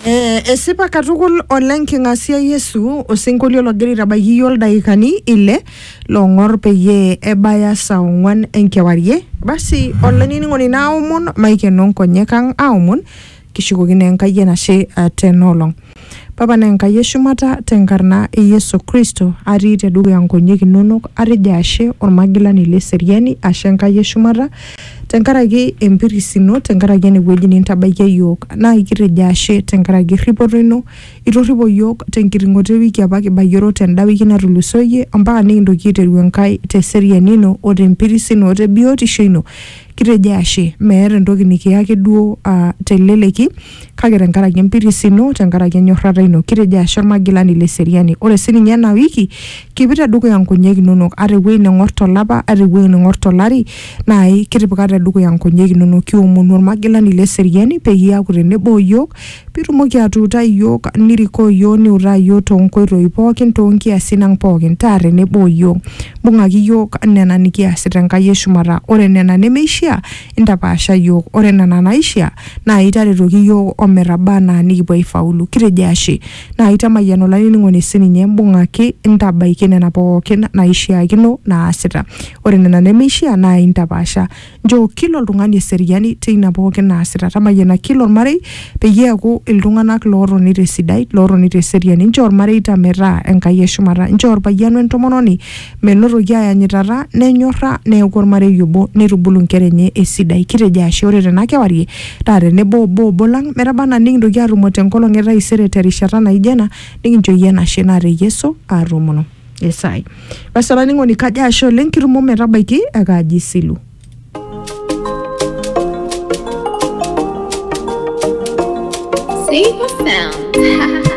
Eh, esipa katukul oleng king'asia Yesu osinkolio logira aitabaiki iyiook ildaikani ile loong'or peyie ebaya saa ong'wan enkewarie. Basi olainining'oni naomon maikeno nkonyek ang aomon kishukokino Enkai enashe eh, tena olong. Papa naa Enkai e shumata, te nkarna e Yesu Kristo atii te dukuya nkonyek inonok atejo ashe olmagilani le seriani, ashe Enkai e shumata tenkaraki empiris ino, tenkaraki ene wueji nintabaikia iyiook. Naa kitejo ashe tenkaraki erripoto ino, itorripo iyiook te nkiting'oto e wiki apa kibayioro te n-da wiki natulusoyie ompaka nikintoki aiteru Enkai te seriani ino o te mpiris ino o te biotisho ino. Kitejo ashe meeta entoki nikiya ake duo aa te leleki. kake tenkaraki empiris ino, tenkaraki enyorrata ino, kitejo ashe olmagilani le seriani. Ore sininye ena wiki, kipik tedukuya nkonyek inonok, ata ewuei neng'or tolapa, ata ewuei neng'or tolari, naai kitipika tedukuya nkonyek inonok. Kiomonu olmagilani le seriani peyie iaku tenebo o yiok, pitumoki atuutai iyiok, nirikoo yiok, niutaa yiok toonkoitoi pookin, toonkiasin ang' pookin. Taa tenebo o yiok. Mbung'aki yiok nena nikiasita Enkai e shumata. Ore nena nemeishia, Intapaasha iyiook, ore nena naaishia naa itaretoki iyiook o metaba anaa nikipuo aifaulu. Kitejo ashe. Naa aitamayian olainining'oni sii ninye, mbung'aki intabaiki nena pooki naaishiakino naasita. Ore nena nemeishia naa intapaasha. Nchoo kila oltung'ani eseriani teina pooki naasita. Tamayiana kila olmarei peyie eaku iltung'ana lootoni te sidai, lootoni te seriani. Nchoo ilmareita metaa Enkai e shumata. Nchoo olpayian o entomononi Menotoki aayanyitata, nenyorra, neaku olmarei obo neitubulu nkera enye esidai. Kitejo ashe ore tena kewarie taa tenebo obo obo lang metaba anaa nikintoki aatumo te nkolong e taisere te rishata naijo ena nikincho iyie enashe naa te Yesu aatoomono esaai. Basi olainining'oni kajo ashe oleng kitumo ometabaiki e Kaji Isilu. Safe and sound.